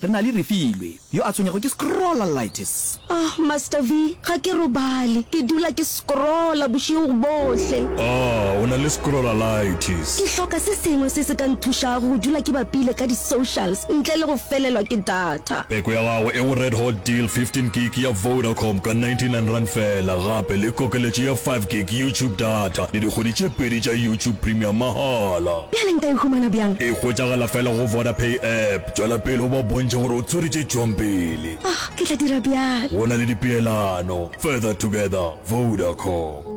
Re na le Refilwe yo a tshwenyego ke scrollalitis. Ahh Master V, ga ke robale, ke dula ke scrolla bošego bohle. Ahh o na le scrollalitis. Ke hloka se sengwe se se ka nthušago go dula ke bapile ka di socials ntle le go felelwa ke data. Peko ya gago e go Red Hot Deal 15 gig ya Vodacom ka 99 rand fela gape le kokeletšo ya 5 gig YouTube data le dikgwedi tše pedi tša YouTube Premium mahala. Bjale nka e humana bjang? E hwetšagala fela go Vodapay app. Tšwela pele o ba bontšhe gore o tshwere tše tšwang pele. Ah, ke tla dira bjalo. Go na le dipeelano. Further together, Vodacom.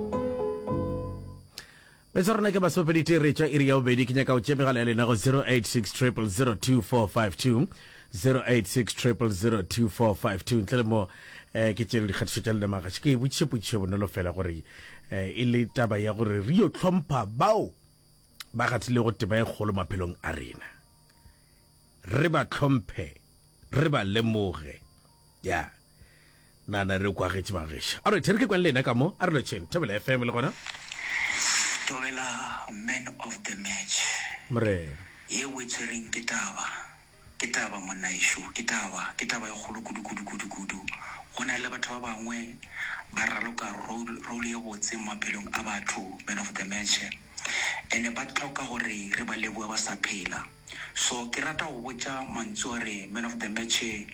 Be tsa rona ke basopedi te re tša iri ya bobedi ke nyaka o tše megala ya lena go 086 002452 086 002452 ntle le mo eh, ke tšere dikgatišo tša lena magaši ke e botšiše potšišo e bonolo fela gore eh, e le taba ya gore re yo tlhompha bao ba gathilego teba e kgolo maphelong a rena Re ba hlomphe, re ba lemoge. Ya. Na, na re kwagetše mageša. All right, e re ke kwang le yena ka mo. A re lotšheng. Thobela FM le gona. Thobela, man of the match. Morena. Ye o e tshwereng ke taba. Ke taba, monna ešo. Ke taba. Ke taba e kgolo kudu, kudu, kudu, kudu. Go na le batho ba bangwe ba raloka role, role ye botse mo maphelong a batho, man of the match. Ene ba tloka gore re ba lebohe ba sa phela. So ke rata go botša mantsu a re man of the match e,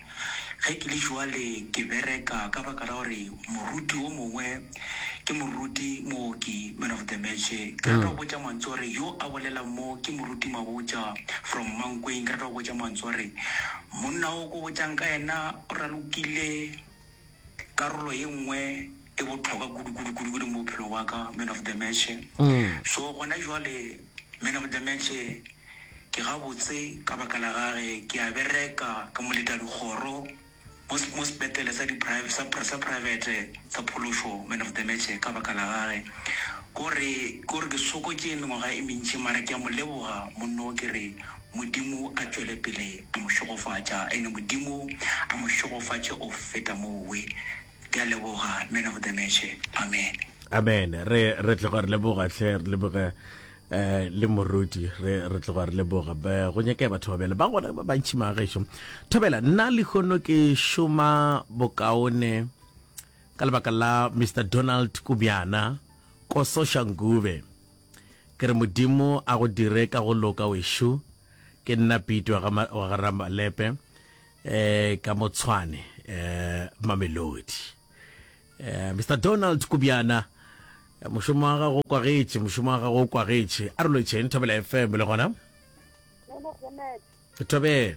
ge ke le jwale ke bereka ka baka la gore moruti o mongwe ke moruti mooki man of the match e, ke rata go botša mantsu a re yo a bolelang mo ke moruti Mabotja from Mankweng, ke rata go botša mantsu a re monna o ko botšang ka yena o ralokile. Karolo ye nngwe e bohlokwa kudu kudu kudu kudu mo bophelong wa ka, man of the match. So gona jwale man of the match ke gabotse ka baka la gage ke a bereka ka moleta dikgoro mo mo sepetlele sa di private sa sa private sa phološo. Man of the match ka baka la gage kore kore ke sokotše mengwaga e mentši mara ke a mo leboga monna o ke re Modimo a tšwele pele a mo šegofatša, ene Modimo a mo šegofatše go feta moo. We. Ke a leboga, Man of the Match. Amen. Amen. Re, re tloga re leboga, hle, re leboge eh, le moruti re re tloga re leboga Be- go nyakea batho ba bjale ba gona ba bantšhi magešo thobela nna lehono ke šoma bokaone ka lebaka la mr donald kubjana ko soshangube Ke re Modimo a go dire ka go loka wešo, ke nna Pete wa ga, wa ga Ramalepe, eh, ka mo Tshwane, eh, Mamelodi. Eh, Mister Donald Kubjana, eh, mošomo wa gago o kwagetše, mošomo wa gago o kwagetše. A re loetšeng Thobela FM le gona. Nene Jeanette. Thobela.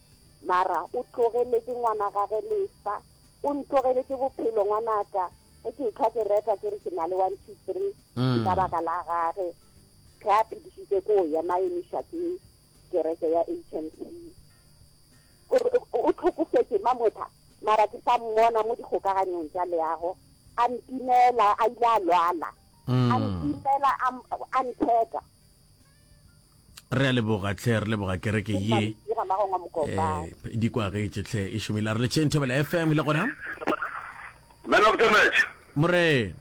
Mara o tlogeletše ngwana gage lesa. O ntlogeletše bophelo ngwanaka. Ge ke ehlwa ke reka ke re ke na le one, two, three, ke ka baka la gage. Ge a phedišitše ko ya ma emiša ke kereke ya HMC. O re o tlhokofetše Mamotha mara ke sa mmona mo dikgokaganyong tša leago. A ntimela a ile a lwala. A ntimela a, a ntheka. re a leboga tlhe re leboga kereke ye eh, di kwagetše tlhe e šomile a re letšheng thobela fm le gona man of the match morena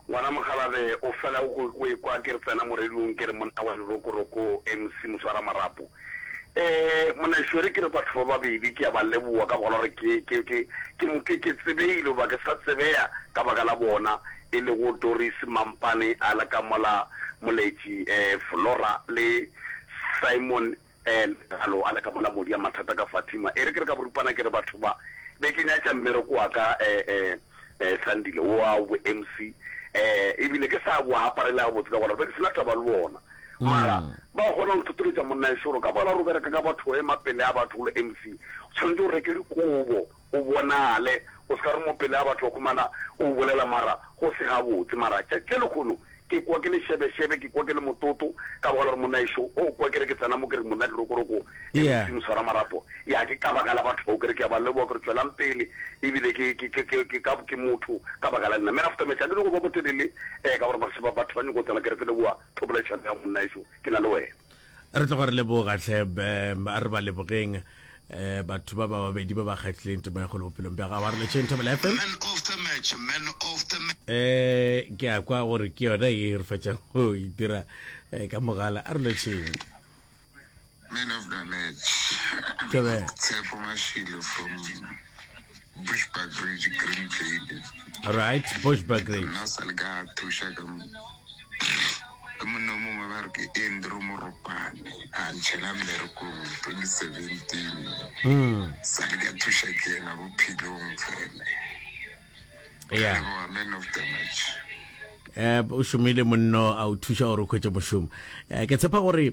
ngwana mogalabe o fela o ekwa ke re tsena moredung ke re monna wa lerokoroko mc moswara marapo um monešwere ke re batho ba babedi ke ya ba leboa ka bogala gore ke tsebegile goba ke sa tsebeya ka baka la bona e lego Doris Mampane a le ka mola, Moletši Flora le Simon Lekalo a le ka mola, Modia Mathata ka Fatima. E re ke re ka boripana ke re, Batho ba, be ke nyatša mmereko wa ka Sandile wowa wa bo-MC e bile ke sa bo aparela gabotse ka gore be ke se na taba le bona. Mara ba kgona go nthotoletša, Monna Ešo, gore ka mola re bereka ka batho, ema pele ga batho, o le MC o tshwanetše o reke dikobo. O bonale, o se ka re mo pele ga batho ba humana o o bolela mara go se gabotse. Mara tšatši le lekhono ke kwa ke le šebešebe, ke kwa ke le mototo ka baka la gore monnaešo o o kwa ke re ke tsena mo ke re monna dirokoroko e le Modimo swara marapo. Ya ke ka baka la batho bao ke re ke a ba leboga ke re tšwelang pele ebile ke ke ke ke ke ka ke motho ka baka la nna. Me after me tlamehile go ba motelele eh ka gore batho ba nyoko tsena ke re ke leboga thopolaišano ya go monnaešo ke na le wena. Re tloga re leboga hle a re ba lebogeng batho ba ba babedi ba ba kgatlhileng temo ya golo bophelong bja gago a re letšheng thobela fm um ke a kwa gore ke yona e re fetšang go e dira ka mogala a re letšheng Man of the match. Tshepo Mashilo from Bushbuckridge Green Table. Right, Bushbuckridge. Nna sa le ka thuša ka mo ke monna mongwe ba re ke Andrew Moropane a ntšhela mmerekong 2017 hmm. sa le ka thuša ke yena bophelong fela yeah. man of the match um o šomile monno a o thuša gore o khwetse mošomo um ke tshepa gore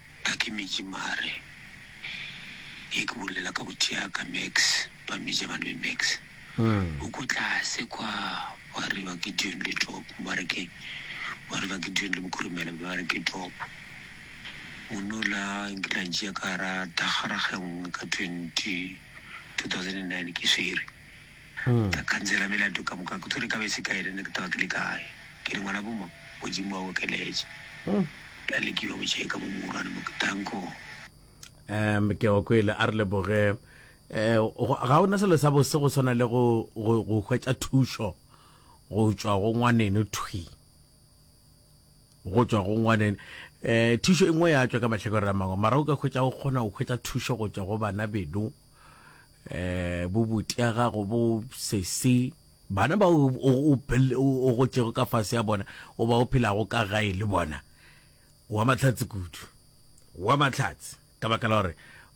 A ke meji mare. Ge ke bolela ka bothea ka Max ba mmeja ba nwe Max. O ko tlase kwa wa re ba Gideon le Top ba re ke wa re ba Gideon le Bokhurumela ba re ke Top. Monna o la nkile a ntšea ka gara thakgara ga nngwe ka 20 2009 ke swere. tsa khansela bjale a tlo ka boka ke tshwere ka be se kae rene ke taga ke le kae ke re ngwana boma modimo wa okeletše ka le ke yo go cheka mo mogolwane mo ke tanko um ke go kwele a re leboge eh, um ga o na selo sa bose go swana le go hwetša thušo go tšwa go ngwaneno thwi go tšwa go ngwaneno um thušo e nngwe ya tšwa ka mahlakore a mangwe mara o ka hwetša o kgona go hwetša thušo go tšwa go bana beno eh bobutia gago bo sesi bana ba o o gotšego ka fase ya bona o ba o phelago ka gae le bona wa mahlatsi kudu wa mahlatsi ka baka la gore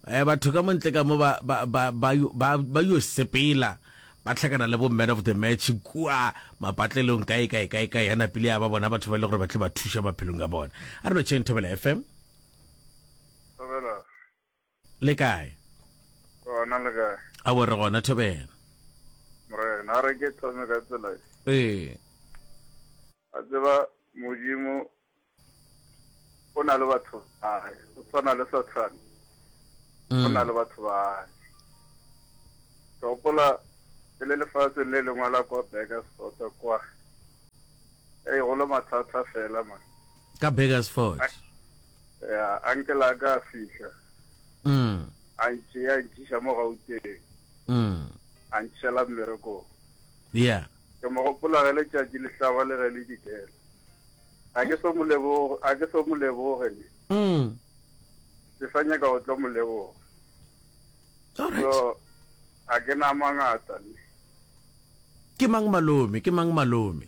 eh batho ka montle ka mo ba ba ba ba ba yo sepela ba tlhakana le bo man of the match kua mapatlelong kae kae kae kae ya napile ya ba bona batho ba ile e gore ba tle ba thuša maphelong a bona a re no chain thobela fm Le kae? Gona le kae? A bo re gona Thobela. Morena, a re ke thome ka tsela e. Ee. A tseba Modimo o na le batho ba hae, o tshwana le Sathane. O na mm. le batho ba hae. Ke gopola e le lefatsheng le lengwe la kwa Burgersfort kwa. Ei, go le mathata fela man. Ka Burgersfort. Ya, uncle a ka a fihla. Mm. A ntše a ntšiša mo Gauteng. Mm. A ntšhela mmerekong. Yeah. Ke mo gopola ge letšatši le hlaba le ge le dikela. A ke so mo leboge, a ke so mo leboge ne. Mm. Ke sa nyaka go tlo mo leboga. All right. So, a ke na mangata ne. Ke mang malome? Ke mang malome?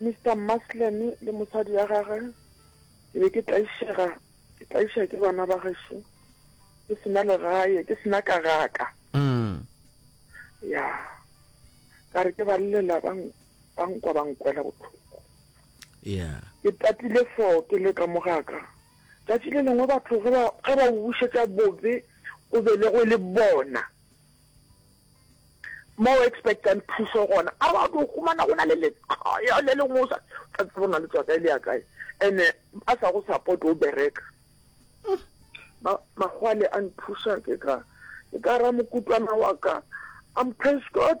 Mister Muslim le mosadi ya gagwe ke be ke tlaišega ke tlaiša ke bana ba gešo ke sena legae ke sena kagaka mm. ya ka re ke ba llela ba nkwa ba nkwela botlhoko yeah. ke tatile fo ke le ka mogaka tšatši le lengwe batho ge ba bušetša bobe o be le go e le bona mo o expectang thuso gona a ba tlo humana go na le letloyo le lengwe o sa tsa tsebo na le tswa kae le ya kae ene a sa go support o bereka magwale a nthusa ke ka ke ka ra mokutwana wa ka am praise god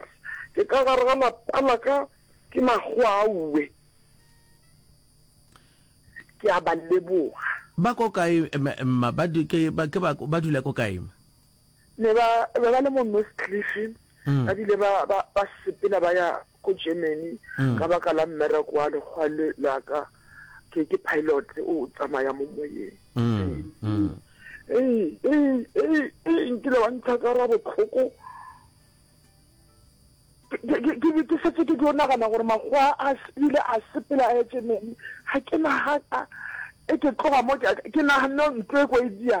ke ka gare ga lapa la ka ke magwaue ke a ba leboga ba ko kae mma ba dula ko kae ne ba ba ba le mo Noordklif ba bile ba ba ba sepela ba ya ko Germany ka baka la mmereko wa lekgwa le la ka ke ke pilot o tsamaya mo moyeng ee ee ee nkile wa ntsha ka ra botlhoko ke setse ke tlo nagana gore makgowa a ile a sepela a etse meng ga ke naga e ke tloga mo ke naganne ntlo e ko e dia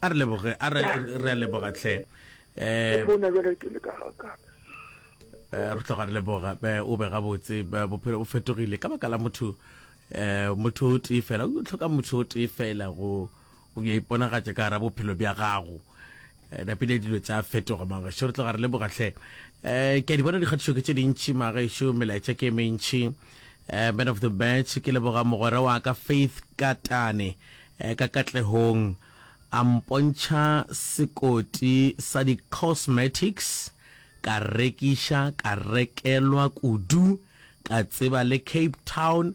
a re leboge a re re a leboga tlhe eh bona jalo ke le ka ka eh, re tloga re leboga eh, o be gabotse eh, bophelo bo fetogile ka baka la motho eh motho o tee fela o tlhoka motho o tee fela go go ya iponagatša ka gara bophelo bja gago napile dilo tsa fetoga magaešo re tloga re le bogatlhe um eh, ke a di bona dikgatišo ke tse dintšhi magaešo melaetša ke e mentšhi um eh, man of the match ke leboga mogwera wa ka faith katane um ka katlehong a mpontšha sekoti sa di-cosmetics ka rekiša ka rekelwa kudu ka tseba le cape town